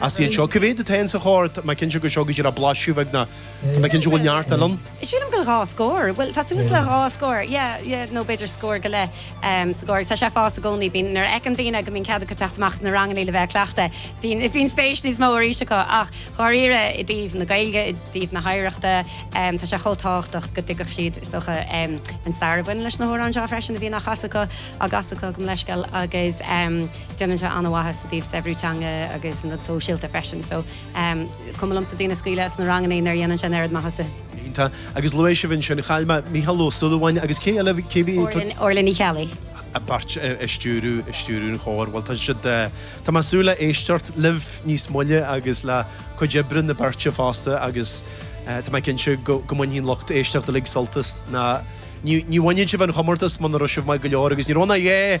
Is iad seo, cé mhéad atá ann sa chór? Tá mé cinnte go bhfuil seo go díreach blaiseadh beag nó tá mé cinnte go bhfuil neart eile ann. Sílim go bhfuil dhá scór. Bhuel, tá suas le dhá scór, yeah, yeah, nó b'fhéidir scór go leith sa gcór. Tá sé ag fás i gcónaí. Bíonn, nuair a fheiceann daoine go mbíonn cead acu teacht amach sna ranganna le bheith ag cleachtadh, bíonn, bíonn spéis níos mó arís acu. Ach, dháiríre, i dtaobh na Gaeilge, i dtaobh na hoidhreachta, tá sé chomh tábhachtach go dtuigfeadh siad, is dócha, an stair a bhaineann leis na hamhráin seo freisin a bhíonn á chasadh acu, á gcasadh acu, gabh mo leithscéal, agus. déanann sé an-mhaitheas i dtaobh saibhriú teanga agus an rud sóisialta freisin. So, em, cuma liomsa daoine a scaoileadh as na rangannaí nuair a dhéanann sé an oiread maitheasa. Tá. Agus luaigh sibh ansin, chuala mé Mícheál Ó Súilleabháin agus cé eile a bhí, cé bhí? Orla, Orla Ní Cheallaigh. a bpáirt i stiúradh, i stiúradh an chóir. Bhuel, tá siad eh, tá mé ag súil le éisteacht libh níos moille agus le cuid oibre na beirte fosta agus eh, tá mé cinnte go, go mbainfidh an lucht éisteachta uilig sult as na, ní, ní bhainfeadh sibh an comórtas muna raibh sibh maith go leor agus ní raibh na, yay!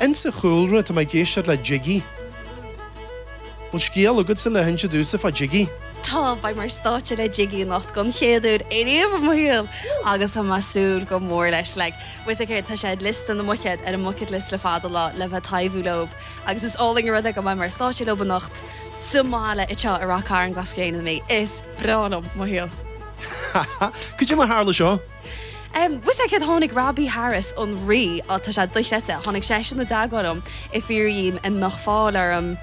Insa chúlra tá mé ag éisteacht le Jiggy. Bhfuil scéal agatsa le hinse domhsa fá Jiggy? Tá, beidh mé ar stáitse le Jiggy anocht don chéad uair ariamh i mo shaol agus tá mé a' súil go mór leis. Like, muise céard, tá sé ar liosta na mbuicéad, ar an mbucket list le fada lá, le bheith a' taibhiú leob agus is álainn an rud é go mbeidh mé ar stáitse leob anocht sa mbaile anseo i Ráth Cairn, Glas Gréine na Mí. Is breá liom mo shaol. Ha ha, cad é mar tharla seo. Bhuel, sea, céard tháinig Robbie Harris, an Rí, á, tá sé dochreidte, tháinig seisean i dteagmháil liom ag fiafraí an mbeadh fáil orm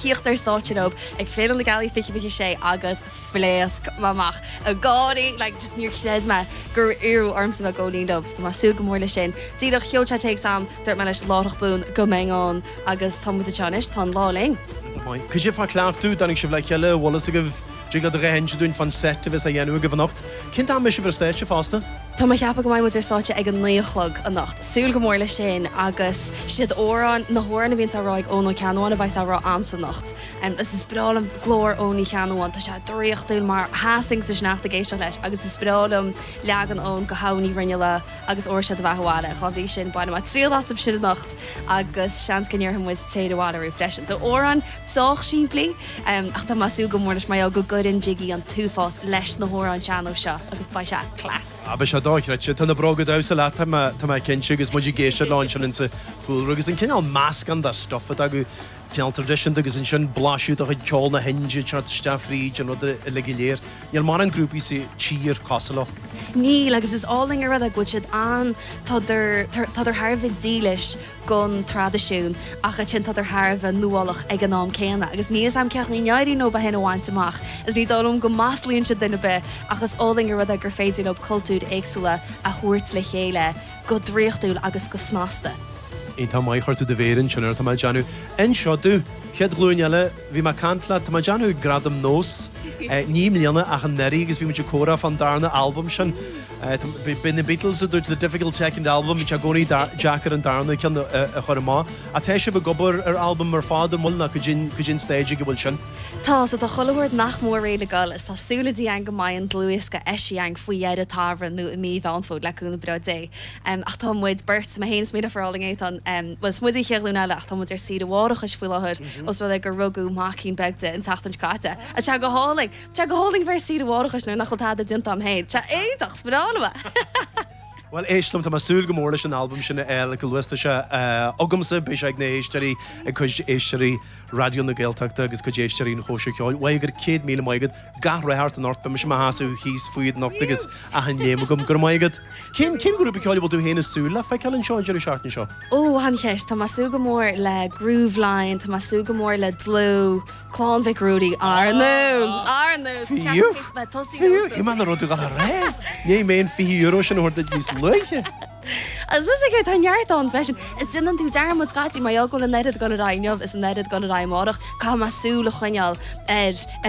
thíocht ar stáitse leob ag Féile na Gealaí 2026 agus phléasc mé amach ag gáirí, like, just níor chreid mé gur iarradh ormsa bheith ag gabháil fhoinn leob, so tá mé ag súil go mór leis sin. Díreach, sheol sé téacs a'm, dúirt mé leis láithreach bonn go mbeinn ann agus tá muid anseo anois, tá an lá linn. Cad é fá cleachtadh, dtáinig sibh le chéile, bhfuil fhios agaibh? Dtig leat a dhath a inse dúinn fán seit a bheas á dhéanamh agaibh anocht. Cén t-am a mbeidh sibh ar stáitse fosta? Tá mé a cheapadh go mbeidh muid ar stáitse ag a naoi a chlog anocht. Súil go mór leis sin agus siad amhráin, na hamhráin a bhíonns á rá ag Eoin Ó Ceannabháin a bheidhs á rá a'msa anocht. Is is breá liom glór Eoin Uí Cheannabháin, tá sé draíochtúil mar sheasfainn sa sneachta ag éisteacht leis agus is breá liom leagan Eoin de Shadhbh Ní Bhruinnealla agus Óró Sé do Bheatha Abhaile, dhá bhrí sin bainfidh mé triail astu sin anocht agus seans go ndéarfaidh muid Téir Abhaile Riú freisin. So amhráin sách simplí, ach tá mé ag súil go mór leis mar gheall go gcuireann Jiggy an t-uafás leis na hamhráin sean-nóis seo agus beidh sé class! Ah, beidh sé dochreidte. Tá na bróga damhsa leat, tá mé, tá mé cinnte, agus muid ag éisteacht leo ansin insa chúlra. Agus an cineál meascán de stuff atá acu, cineál traidisiúnta agus ansin blaiseadh de chuid ceol na hIndia ag teacht isteach fríd an rud uilig go léir. Níl mórán grúpaí sa tír cosúil leo. Níl, agus is álainn an rud é go bhfuil siad ann, tádar, tádar thar a bheith dílis don traidisiún ach ansin tádar thar a bheith nuálach ag an am céanna. Agus níl a fhios a'm cén chaoi a n-éiríonn leob é sin a bhaint amach, is ní dóigh liom go maslaíonn siad duine ar bith, ach is álainn an rud é gur féidir leo cultúir éagsúla a thabhairt le chéile go draíochtúil agus go snasta. Iontach maith, chuir tú do mhéar ansin air, tá mé ag déanamh. Inis domh, chéad ghlúin eile. Bhí mé ag caint leat, tá mé ag déanamh ag Gradaim Nós ní i mbliana ach anuraidh agus bhí muid ag comhrá fán darna albam sin. B'é na Beatles a dúirt the difficult second album, bhí sé i gcónaí deacair an darna ceann a chur amach. Ach tá sibh ag obair ar albam ar fad, an bhfuil? Nó goidé an stage ag a bhfuil sin? Tá, so tá chuile shórt nach mór réidh le goil is tá súil againn go mbeidh an dlúthdhiosca eisithe againn faoi dheireadh an tsamhraidh nó i mí Mheán Fómhair le cúnamh breá Dé. em ach tá muid beirt, tá mé féin is mo dheirfiúr álainn Étáin, em bhuel is muid An Chéad Ghlúin Eile ach tá muid ar saoire mháithreachais faoi láthair os rud é gur rugadh maicín beag di an tseachtain seo caite. A sea go hálainn! Tá sé go hálainn a bheith ar saoire mháithreachais nuair nach bhfuil tada déanta a'm féin. Sea iontach sparánamah! Bhuel éist liom, tá mé ag súil go mór leis an albam sin a fháil go luath. Tá sé eh agamsa, beidh sé ag na héisteoirí, ag cuid éisteoirí Raidió na Gaeltachta agus cuid éisteoirí an Chóisir Cheoil. Á go raibh céad míle maith agat. gach rath ort anocht beidh mise i mo sheasamh thíos fút anocht agus achan léim agam. Go raibh maith agat. Cén, cén grúpa ceoil a bhfuil tú fhéin ag súil le feiceáil anseo an deireadh seachtaine seo? Ó, an-cheist. Tá mé ag súil go mór le Grooveline, tá mé ag súil go mór le Dlúth, Clann Mhic Ruairí, Ár nDún! Ár nDún! Fiú! Cheapaim go mbeidh tosaí Fiú! agamsa. Iomaí na rudaí dhá raibh! Ní mbeidh an €20 sin a thabhairt duit níos luaithe. Agus fios aige, tá neart ann freisin. Is déanann tú dearmad scaití, má fhágfainn an oiread ag goil ar aghaidh inniu is an oiread ag goil ar aghaidh amárach, caithfidh mé súil a choinneáil ar, ar an.